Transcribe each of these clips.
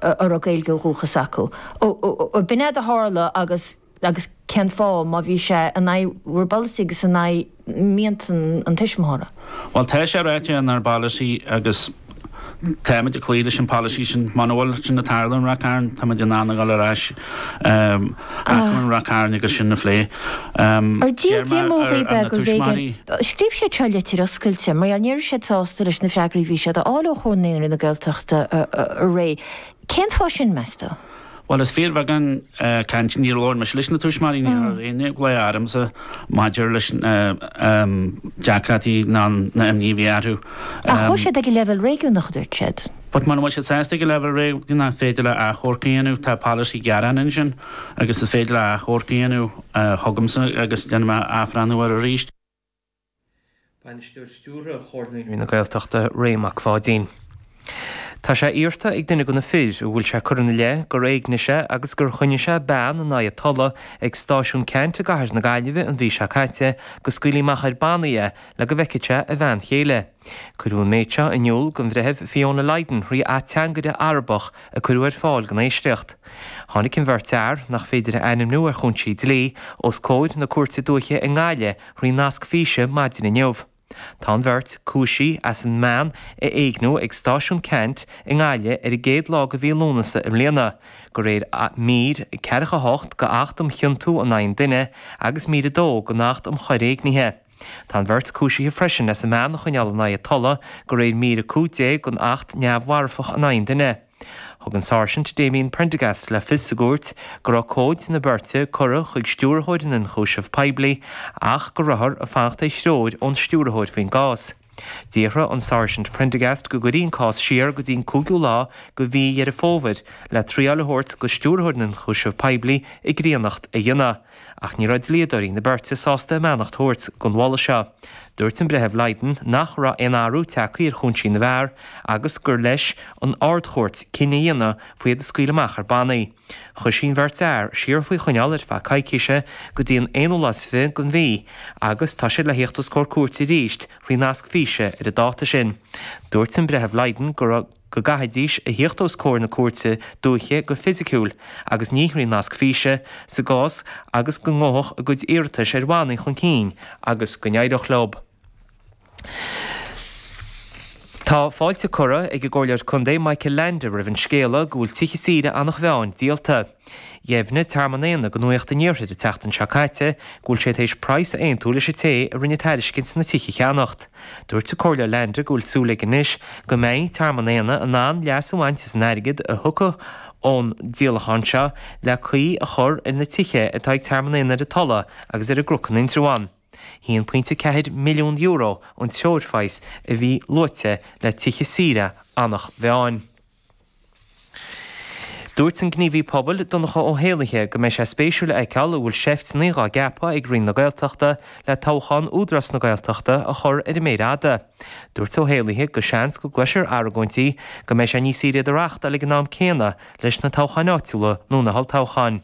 a raibh Gaeilge ó dhúchas acu. B'in é a tharla agus agus cén fáth má bhí sé in aghaidh bhur bpolasaí agus in aghaidh mianta an tuismitheora? Bhuel, tá sé ráite inár bpolasaí agus táimid ag cloí leis an pholasaí sin. Muna bhfuil sin ag tarlú i Ráth Chairn, táimid in ann a dhul ar ais. Ráth Chairn agus sin a phlé. Ar d'iarr Diarmuid Uí Beaglaoich air, scríobh sé tríd litir oscailte mar gheall ní raibh siad sásta leis na freagraí a bhí siad a fháil ó Chomhar Naíonraí na Gaeltachta, a Ray. Cén fáth sin, meas tú? Bhuel, is fíorbheagán cainte, níor labhair mise leis na tuismitheoirí, níor chuir éinne glao ormsa maidir leis na deacrachtaí ná na imní a bhí orthu. Ach chuaigh siad ag an leibhéal réigiúnach a dúirt siad. Ach muna bhfuil siad sásta ag leibhéal réigiúnach, is féidir leo achomharc a dhéanamh, tá polasaí gearán ansin agus is féidir leo achomharc a dhéanamh chugamsa agus déanfaidh mé athbhreathnú air arís. Bainisteoir Stiúrtha Chomhar Naíonraí na Gaeltachta, Ray Mac Pháidín. Tá sé iarrta ag duine de na fir a bhfuil sé curtha ina leith gur éignigh sé agus gur choinnigh sé bean in aghaidh a tola ag Stáisiún Cheannt i gcathair na Gaillimhe an mhí seo caite go scaoilfí amach ar bhannaí é le go bhfeicfeadh sé a bhean chéile. Cuireadh an méid seo in iúl don Bhreitheamh Fiona Lydon, thrí ateangaire Arabach a cuireadh ar fáil don éisteacht. Tháinig an bheirt fhear, nach féidir a ainmniú ar chúinsí dlí, os comhair na Cúirte Dúiche i nGaillimh thrí nasc físe maidin inniu. Tá an bheirt, cúisithe as an mbean a éigniú ag Stáisiún Cheannt i nGaillimh ar an gcéad lá de mhí Lúnasa i mbliana, de réir Mír 48 d'Acht um Chionta in Aghaidh an Duine agus Mír 2 den Acht um Choir Éignithe. Tá an bheirt cúisithe freisin as an mbean a choinneáil in aghaidh a tola de réir Mír 15 den Acht Neamh-mharfach in aghaidh an Duine. Thug an Sáirsint Damien Prendergast le fios sa gcúirt go raibh comhaid na beirte curtha chuig Stiúrthóir na nIonchúiseamh Poiblí ach go rabhthar ag fanacht ar threoir ón Stiúrthóir faoin gcás. D'iarr an Sáirsint Prendergast go gcuirfí an cás siar go dtí an cúigiú lá go mhí Dheireadh Fómhair le triail a thabhairt go Stiúrthóir na nIonchúiseamh Poiblí a ghnaíocht a dhéanamh, ach ní raibh dlíodóirí na beirte sásta a mbeannacht thabhairt don mholadh seo. Dúirt an Breitheamh Lydon nach raibh aon athrú tagtha ar chúinsí na bhfear agus gur leis an Ard-Chúirt cinneadh a dhéanamh faoi iad a scaoileadh amach ar bannaí. Chuir sí an bheirt fhear siar faoi choinneáil ar feadh coicíse go dtí an aonú lá is fiche den mhí agus tá siad le theacht os comhair cúirte arís thrí nasc físe ar an dáta sin. Dúirt an Breitheamh Lydon go go gcaithfidís a theacht os comhair na cúirte dúiche go fisiciúil agus ní thrí nasc físe sa gcás agus go ngabhfadh a gcuid iarratais ar bhannaí chun cinn agus go n-éireodh leo. Tá fáilte curtha ag an gComhairleoir Contae Michael Leainde roimh an scéala go bhfuil tithe saoire Eanach Mheáin díolta. Dheimhnigh Tearmann Éanna go Nuacht an Iarthair an tseachtain seo caite go bhfuil siad tar éis praghas a aontú leis an té a rinne tairiscint na tithe a cheannacht. Dúirt an Comhairleoir Leainde go bhfuil súil aige anois go mbeidh Tearmann Éanna in ann leas a bhaint as an airgead a thiocfaidh ón díolachán seo le caoi a chur ar na tithe atá ag Tearmann Éanna ar an Tulaigh agus ar an gCnocán in Indreabhán. €1.4 milliún an treoirphraghas a bhí luaite le tithe saoire Eanach Mheáin. Dúirt an gníomhaí pobail, Donncha Ó hÉallaithe, go mbeidh sé spéisiúil a fheiceáil an bhfuil seifteannaí dhá gceapadh ag Roinn na Gaeltachta le toghchán Údarás na Gaeltachta a chur ar an méar fhada. Dúirt Ó hÉallaithe go seans go gcloisfear argóintí go mbeidh sé níos saoire iad a reáchtáil ag an am céanna leis na toghcháin áitiúla nó na holltoghcháin.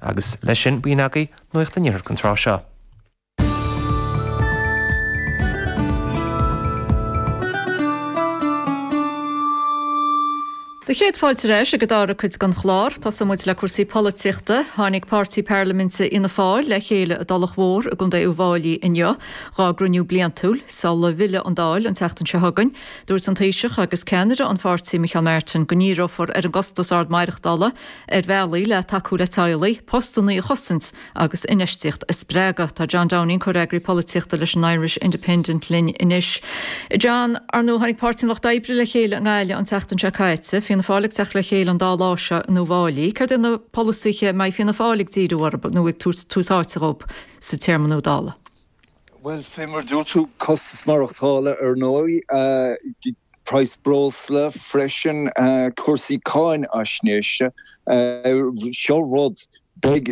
Agus leis sin, b'in agaibh Nuacht an Iarthair an tráth seo. 'Sé do chéad fáilte ar ais ag an dara cuid den chlár, tosóidh muid le cúrsaí polaitíochta. Tháinig páirtí parlaiminte Fhianna Fáil le chéile i dTulach Mhór i gcontae Uíbh Fhailí inniu dhá gcruinniú bliantúil sula bhfillfidh an Dáil an tseachtain seo chugainn. Dúirt an Taoiseach agus ceannaire an pháirtí Micheál Martin go ndíreofar ar an gcostas ard maireachtála Ar bhealaí le tacú le teaghlaigh, postannaí a chosaint agus infheistíocht a spreagadh. Tá John Downing, Comhfhreagraí Polaitíochta leis an Irish Independent linn anois. John, Ar ndóigh tháinig Páirtí an Lucht Oibre le chéile i nGaillimh an tseachtain seo caite. Fianna Fáil ag teacht le chéile an dá lá seo in Uíbh Fhailí. Céard iad na polasaithe a mbeidh Fianna Fáil ag díriú orthu nó ag tabhairt tús áite dhóibh sa téarma nua Dála? Bhuel, fé mar a dúirt tú, costas maireachtála ar ndóigh, praghas breosla freisin, cúrsaí cáinaisnéise, seo rud a bheidh